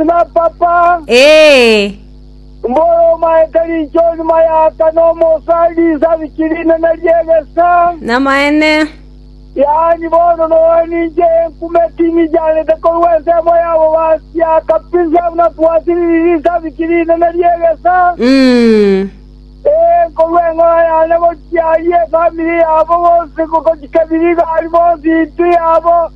na papa, Ee, mbore omaete rinchoni mayaka nomosa risabiki rinene ri'egesa, namaene. yaani bono noe ninche enkume timi chiarete korwa ensemo yabo basia kabisa buna twasiriri risabiki rinene ri'egesa, Mm. ee, korwa eng'ora yane gochia aye efamiri yabo bonsi gochia kebiri igari bonsi intwe yabo,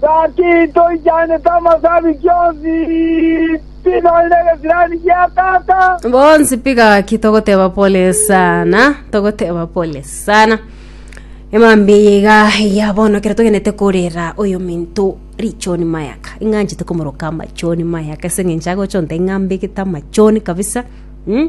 Gaki toichanete amasabiki onsi, pi nonye negesirani gia tata. Bonsi pi gaki togoteba pole sana togoteba pole sana emambi eye iga eya bono kero togenete korera oyo minto richoni mayaka ing'anchete komoroka amachoni mayaka ase eng'encho agochonta ing'ambegete amachoni kabisa mm?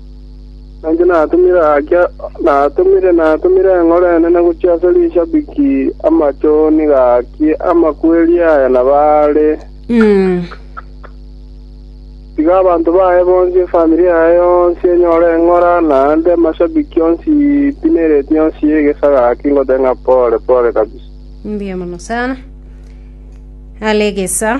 Na inche natumire gaki, natumire, natumire eng'oro enene gochia ase rishabiki amachoni gaki amakweri aya nabo are. Tiga abanto baye bonsi, efamiri yaye yonsi enyore eng'ora, naende amashabiki onsi pi ne reti yonsi y'egesa gaki ngote ng'a pole, pole kabisa. Mbuya mono sana. Are egesa.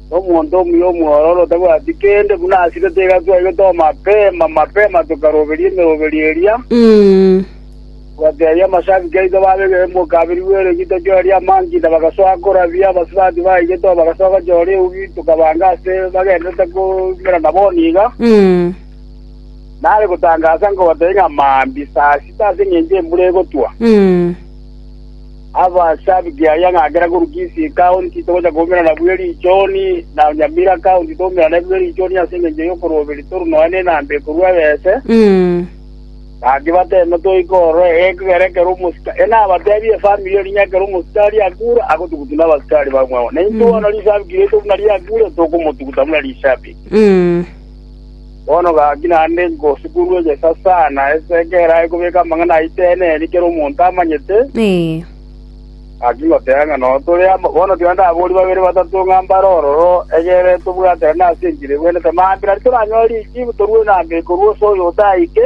Omonto omuya omwororo tabwati kende, buna asirete iga twaigete omapema mapema tokaroberia emeroberio eria, twateebia amashabiki aito babe egekembe okabirigwa eregi tochorerie amankida, bagasoa korabia, abasubati baigete oo bagasoa gochora eubi, tokabaanga ase bagendererete koumera na bono iga. Nare gotangasa nkobateebia ng'a mambia saa sita ase engencho embura egotwa. Abasabiti ayio ng'a kera korwa Kisiika ontito gocha koumera nabu Erichoni, na onye Miraka ontito oumera nabu Erichoni ase engencho y'okorwoberio toru nonya nenamba ekorua ebese, gaki bateeme toike ororo ekero ekero omosike ng'a abateebie efamiri erio ng'a ekero omosikari akure agotugutu nabasikari bamwabo, na intwe bono risabiti riaito buna riakure tokomotuguta buna risabiti. Bono gaki naende ngosukunwe gesa sana, ense ekero aye kobeka amang'ana aito eena eeri kera omonto amanyete, gaki ngoteba ng'a noo tore amo. Bono tiga ndaborie babere batato ng'a mbare ororo, egere tobwaterane ase enchera egwenerete mambia, nari toranyore richiibu torue na mbeko rw'ose oyo otaike.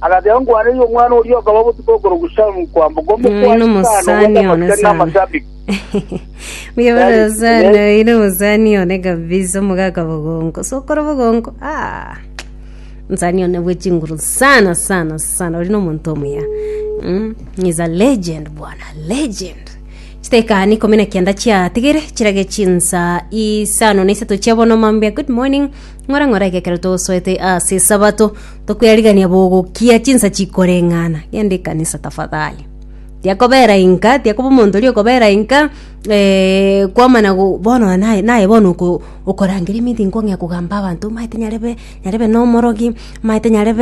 Agateba, Nkwaneirie omwana oria okaba botuko okorokwa Shamu kwamboka omokuani sana ogwete amasikani na amasabibu. Muyabonasana oyi nomusani one kabisa omogaka bogonko sokoro bogonko ah nsani one bwechinguru sana sana sana ori nomonto omuya mm. is a legend bwana legend chitekani ikumi na kianda chiatigere chirage chinsa isano na isato chiabono mambia good morning ng'ora ng'ora egekero togosoete ase sabato Tokwerigereria bogokia chinsa chikoreng'ana, genda ekanisa tafadhali. Tiakobera inka, tiakoba omonto oria okobera inka, eh, kwamana go- bono naye naye bono oko- okorangeria maybe nkong'ea kogamba abanto, omanyete nyarebe nyarebe na omorogi, omanyete nyarebe.